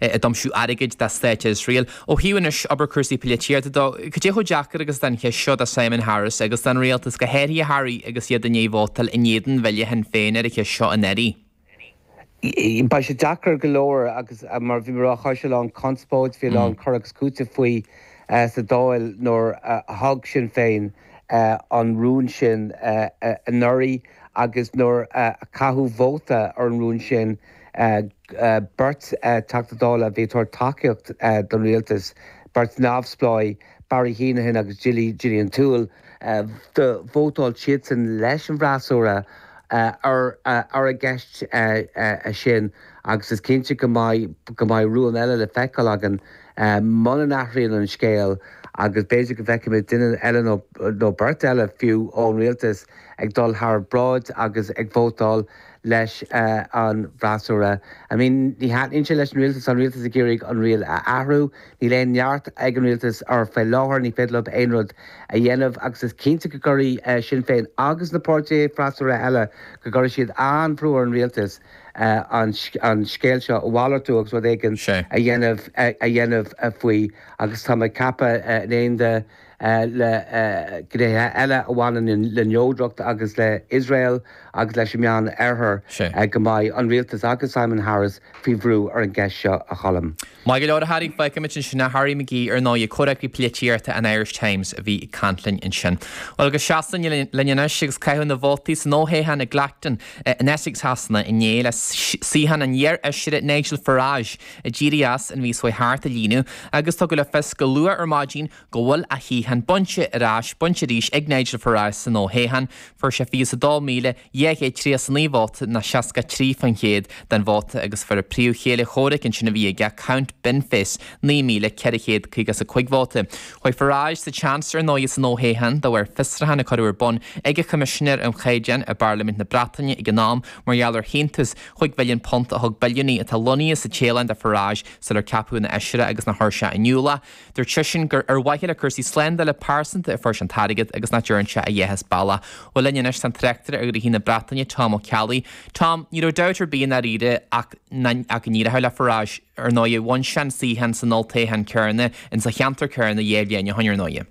ag aimsiú airgid do stát Iosrael. Ó thaobh anois abair cúrsaí polaitíochta de, cad é chomh deacair agus atá an cheist seo do Simon Harris agus don rialtas go háirithe a Harry agus iad i ndiaidh vótáil in éadan bhille Shinn Féin ar an cheist seo anuraidh? Beidh sé deacair go leor agus mar a bhí mé a rá chuir sé a lán conspóide, bhí a lán cur agus cúiteamh faoi sa Dáil nuair a thug Sinn Féin an rún sin anuraidh agus nuair a caitheadh vóta ar an rún sin. Beirt Teachta Dála a bhí ag tabhairt tacaíocht don rialtas, beirt neamhspleách, Barry Heneghan agus Gillian Toole, do vótáil siadsan leis an bhfreasúra ar an gceist sin agus is cinnte go mbeidh rún eile le feiceáil againn muna n-athraíonn an scéal agus b'fhéidir go bhfeicfimid duine eile nó beirt eile fiú ón rialtas ag dul thar bráid agus ag vótáil leis an bhfreasúra. I mean ní thaitníonn sé leis an rialtas, tá an rialtas ag iarraidh an riail a athrú. Níl aon neart ag an rialtas air faoi láthair, ní féidir leo aon rud a dhéanamh agus is cinnte go gcuirfidh Sinn Féin agus na páirtithe freasúra eile, go gcuirfidh siad an-bhrú ar an rialtas an scéal seo a mhalartú agus rud éigin a dhéanamh faoi agus tá mé ag ceapadh in éineacht le gnéithe eile a bhaineann le neodracht agus le Iosrael agus leis an Meán Oirthear go mbeidh an rialtas agus Simon Harris faoi bhrú ar an gceist seo, a Choilm. Maith go leor a Harry, fágfaimid ansin a Harry McGee ar ndóigh comhfhreagraí polaitíochta an Irish Times a bhí ag caint linn ansin. Bhuel go Sasana linn anois agus caitheamh na vótaí san fhothoghchán i gClacton in Essex Shasana inné le suíochán an iar-fheisire Nigel Farage a d'éirigh as an mhí seo thart a líonadh agus tugadh le fios go luath ar maidin go bhfuil a shuíochán bainte ar ais bainte arís ag Nigel Farage san fhothoghchán, fuair sé 22,239 vóta ná 63% den vóta agus fuair a phríomhchéile comhraic ansin a bhí aige, Count Binface, 9,455 vóta. Chuaigh Farage sa tseans ar ndóigh san fhothoghchán de bharr fiosruchán a cuireadh ar bun ag an choimisinéir um chaighdeáin i bParlaimint na Breataine ag an am mar gheall ar shíntiús chúig mhilliún punt a thug billiúnaí atá lonnaithe sa Téalainn do Farage sular ceapadh ina fheisire agus nár chuir sé in iúl Dúirt seisean gur ar mhaithe le cúrsaí slándála pearsanta a fuair sé an t-airgead agus nach dtearn sé a dhath as bealach. Bhuel linn anois tá an tráchtaire ar ghnoithí na Breataine, Tom Ó Ceallaigh. Tom, ní raibh dabht ar bith i ndáiríre ach ach go n-éireodh le Farage. Ar ndóigh bhain sé an suíochán san olltoghchán cheana, insa cheantar céanna, dhá bhliain ó shin ar ndóigh.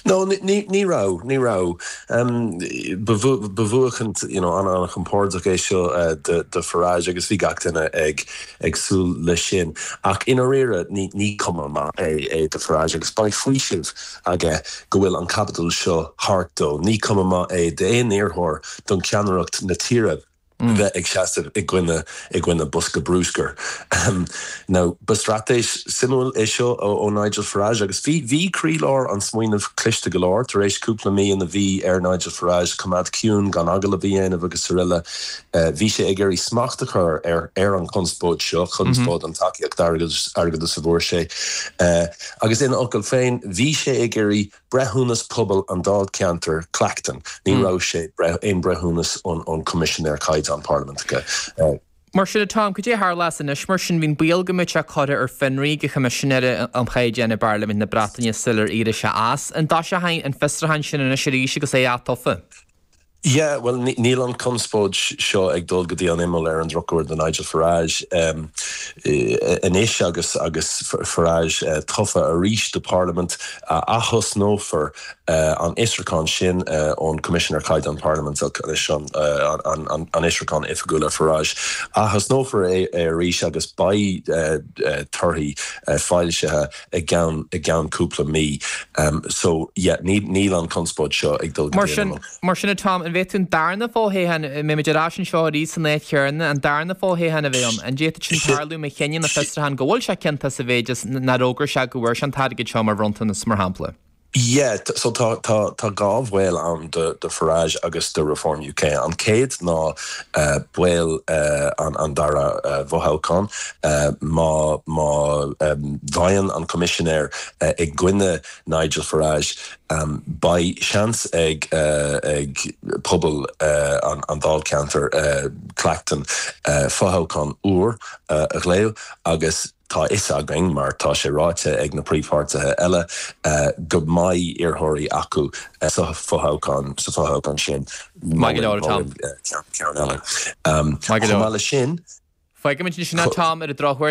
No, ní raibh, ní raibh. Ba bhuachaint an-chompordach é seo do Farage agus bhí gach duine ag súil leis sin. Ach i ndáiríre ní cuma maith é do Farage agus beidh faoiseamh aige go bhfuil an caibidil seo thart dó. Ní cuma maith é d'aon iarrthóir don cheannaireacht na tíre. bheith ag seasamh i gcoinne i gcoinne bosca brúscair. Ahem. Now, ba straitéis suimiúil é seo ó Nigel Farage agus bhí bhí croílár an smaoinimh cliste go leor. Tar éis cúpla mí ina bhí ar Nigel Farage coimeád ciúin, gan agallamh a dhéanamh agus aroile, bhí sé ag iarraidh smacht a chur ar ar an chonspóid seo, conspóid an tacaíocht airgeadais a fuair sé, agus ina fhocail féin, bhí sé ag iarraidh. Breithiúnas Pobail an Dáilcheantair Clacton, ní raibh sé aon breithiúnas ón Coimisinéir Caighdeán Parlaiminteach. Mar sin a Tom, cad é a tharlós anois mar sin? Bhí an baol go mbeadh sé curtha ar fionraí ag an Choimisinéir um Chaighdeáin i bParlaimint na Breataine sular éirigh sé as. An dtoiseoidh an fiosruchán sin anois arís agus é ath-tofa? Yeah, bhuel, níl an chonspóid seo ag dul go dtí an imeall, ar an drochuair do Nigel Farage. Anois agus Farage tofa arís do Pharlaimint aththosnófar an fhiosrúchán sin ón Coimisinéir Caighdeán Parlaiminteach, is é sin an fiosrúchán Oifigiúil ar Farage, aththosnófar é arís agus beidh torthaí foilsithe. i gceann cúpla mí so yeah níl an conspóid seo ag dul go dtí an imeall. Mar sin a Tom, an bhféadfadh an darna fothoghchán, mbeimid ar ais anseo arís san áit chéarna, an darna fothoghchán a bheith ann, an bhféadfadh sin tarlú má chinneann an fiosrúchán go bhfuil sé ciontach sa mhéid is nár fhógair sé go bhfuair sé an t-airgead seo mar bhronntanas mar shampla? Yeah, so tá, tá, tá dhá bhaol ann do, do Farage agus do Reform UK. An chéad ná baol an, an dara fothoghchán. Má, má bhfaigheann an Coimisinéir i gcoinne Nigel Farage beidh seans ag, ag pobal an, an Dáilcheantair, Clacton, fothoghchán úr a ghlaodh agus, Tá a fhios againn, mar tá sé ráite ag na príomhpháirtithe eile, go mbeidh iarrthóirí acu sa bhfothoghchán sin. Maith go leor, a Tom. Chomh maith leis sin. Faighimid anois an Tom ar an drochuair.